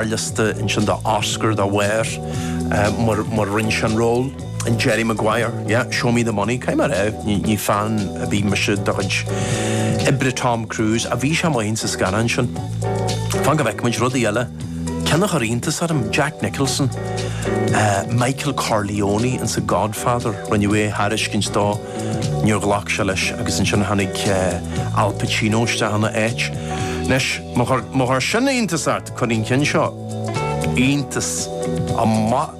ar liosta ansin do Oscar dá bharr, mar rinne sé an ról, in Jerry Maguire, yeah, show me the money, caithfidh mé a rá, ní fan ar bith mise de chuid oibre Tom Cruise, ach bhí sé maith insa scannán sin. Fan go bhfeicfidh muid rudaí eile, ceann a chuir iontas orm, Jack Nicholson, Michael Corleone in sa Godfather, rinneadh é a thairiscint dó, Níor ghlac sé leis agus ansin tháinig Al Pacino isteach ina áit. Anois, má chuir sin iontas ort, cuirfidh an ceann seo iontas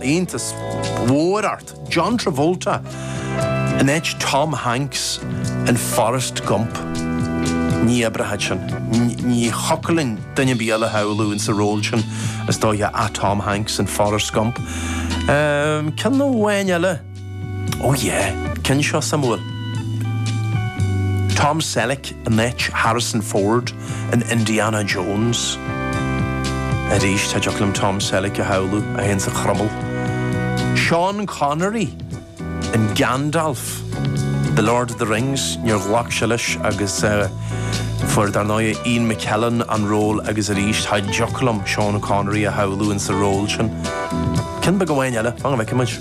níos mó ort, John Travolta in áit Tom Hanks in Forest Gump. Ní oibreoidh sin. Ní thiocfadh linn duine ar bith eile a shamhlú insa ról sin, is dóiche, ach Tom Hanks in Forest Gump. Ceann amháin eile. Oh yeah! Ceann seo suimiúil. Tom Selleck in áit Harrison Ford in Indiana Jones. Arís, ní thiocfadh liom Tom Selleck a shamhlú gan an croiméal. Sean Connery in Gandalf, The Lord of the Rings, níor ghlac sé leis agus fuair dar ndóigh Ian McKellen an ról agus arís, ní thiocfadh liom Sean Connery a shamhlú insa ról sin. Ceann beag amháin eile, fan go bhfeicfimid.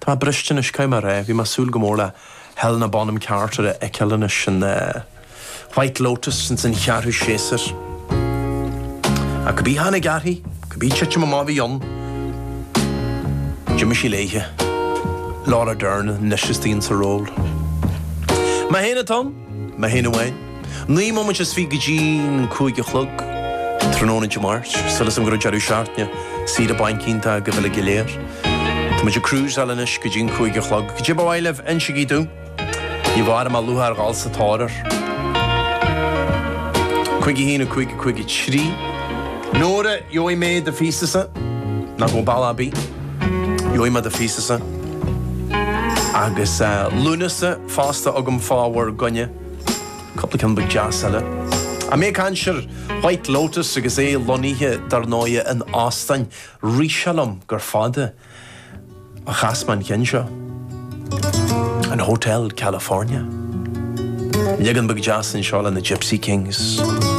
Tá mé briste anois, caithfidh mé a rá? Bhí mé ag súil go mór le Helena Bonham Carter a fheiceáil anois in The White Lotus ins an cheathrú séasúr. Ach cibé a tháinig uirthi, cibé titim amach a bhí ann. D'imigh sí léithi. Laura Dern anois istigh insa ról. Mé féin atá ann! Maith an áit, naoi mbomaite is fiche go dtí an cúig a chlog tráthnóna Dé Máirt, súil agam go raibh deireadh seachtaine saoire bainc iontach agaibh uilig go léir. Tá muid ag cruiseáil anois go dtí an cúig a chlog. Cad é ba mhaith libh, insigí dúinn. Ní bheidh aon mhoill orm a dhul sa tóir air. Cúig a haon, a cúig, a cúig a trí. Nóra, gheobhaidh mé do phíosa-sa. Ná go balla ar bith. Gheobhaidh mé do phíosa-sa. Agus Lúnasa. fásta agam fá bhur gcoinne, cupla ceann beag deas eile. Ach mé ag caint ar White Lotus agus é lonnaithe, dar ndóighe, in óstáin. Rith sé liom gur fada a chas mé an ceann seo. An Hotel California. Leagan beag deas anseo leis na Gipsy Kings.